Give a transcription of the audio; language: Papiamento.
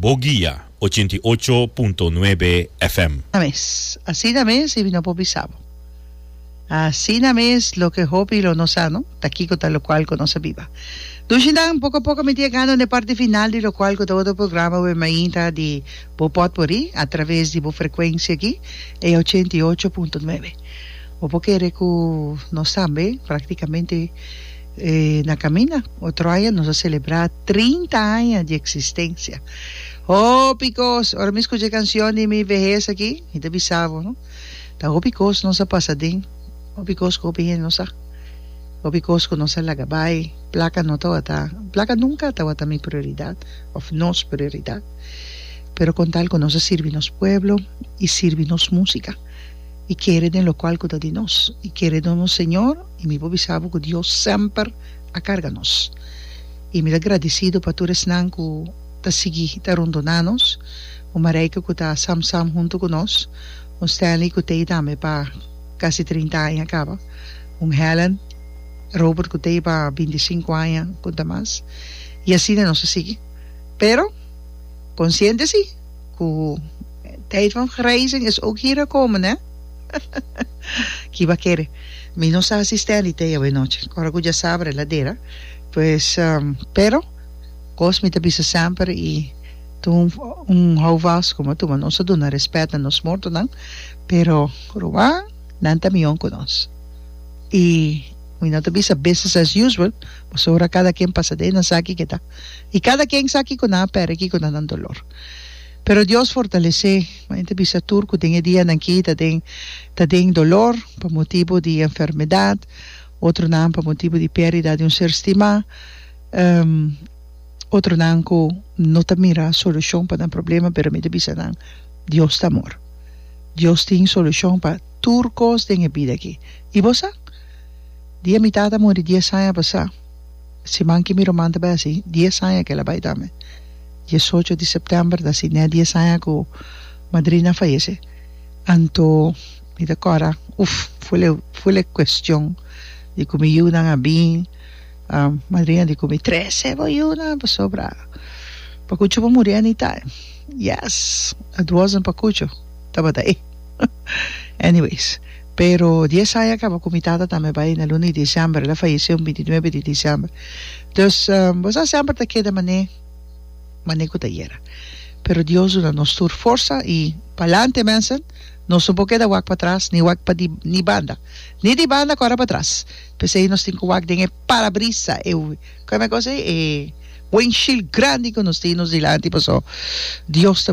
Bo guia, ochenta i ocho punto nuebe FM. Asina mes, asina mes y no por bisa bo. Asina mes loke hopi lo no sa no, ta kico ta locual cu nos a biba. Dushindan, poco a poco miti a gano n'e parti final di locual cu ta otro programa wey mainta di bo pot por ri a traves di bo frecuencia aki, e ochenta i ocho punto nuebe. Bo por kere cu nos tambe practicamente E na caminda otro aña nos a celebra trinta aña di existencia. Hopi cos, ora mi scucha e cancion di mi vehes aki, mi ta bisa bo, no? Ta hopi cos nos a pasa aden, hopi cos cu hopi hende nos sa, hopi cos cu nos a laga bay, placa no tawata, placa nunca a tawata mi prioridad of nos prioridad, pero con tal cu nos a sirbi nos pueblo y sirbi nos musica y kere den locual cu ta di nos y kere den nos Señor. I mi por bisa bo ku Dios semper a karga nos. I mi ta gradisido pa tur esnan ku ta sigui ta rondoná nos, un Marijke ku ta Sam Sam huntu ku nos, un Stanley ku t'ei tambe pa kasi trinta aña kaba, un Helen, Robert ku t'ei pa binti sinku aña punta mas, i asina nos a sigui. Pero konsiente si! cu tijd van grijzing is ook hier gekomen ne ki ba kere mi no sa asisten di thee awe nochi cu ora cu dja sa verdadera pues pero cos mi ta bisa semper y tun un hou vast como atu nos ta duna respet na nos mortonan pero Ruan nan ta miyon cu nos y mi no ta bisa business as usual pasobra cada quien pasa den esaki keda. I kada ken sa kiko nan a pèrdè, kiko nan nan dolor. Pero Dios fortalesé Mayen ta bisa tur ku den e dianan aki ta den ta den dolor pa motibu di enfermedat, otronan pa motibu di pèrdida di un ser stimá, otronan ku no ta mira solushon pa nan problema, pero mi ta bisa nan Dios ta amor. Dios tin solushon pa tur kos den e bida aki. I bo sa? Dia mi tata muri dies aña pasá. Siman ki mi ruman ta bai así, dies aña ki el a bai tambe. Diesocho di sèptèmber ta así nè dies aña ku madrina a fayese. Anto mi ta kòrda, uf, ful e, ful e kuestion di ku mi yunan a bin, madrina a di ku mi, Trece, bo yunan pasobra Pakucho bo muri anita e. Yes, it wasn't Pakucho, tabata e. Anyways. Pero dies aña kaba ku mi tata tambe bai na luna di disièmber, el a fayesé un binti nuebe di disièmber. Dus, bo sa semper ta keda manei, manei ku ta yera. Pero Dios duna nos tur forsa i pa'lante mensen, nos no por keda wak patras ni wak pa di ni banda, ni di banda kòrda patras. P'esei nos tin ku wak den e parabrisa, e, kòme e kos ei? E windshield grandi ku nos tin nos dilanti, pasobra Dios ta.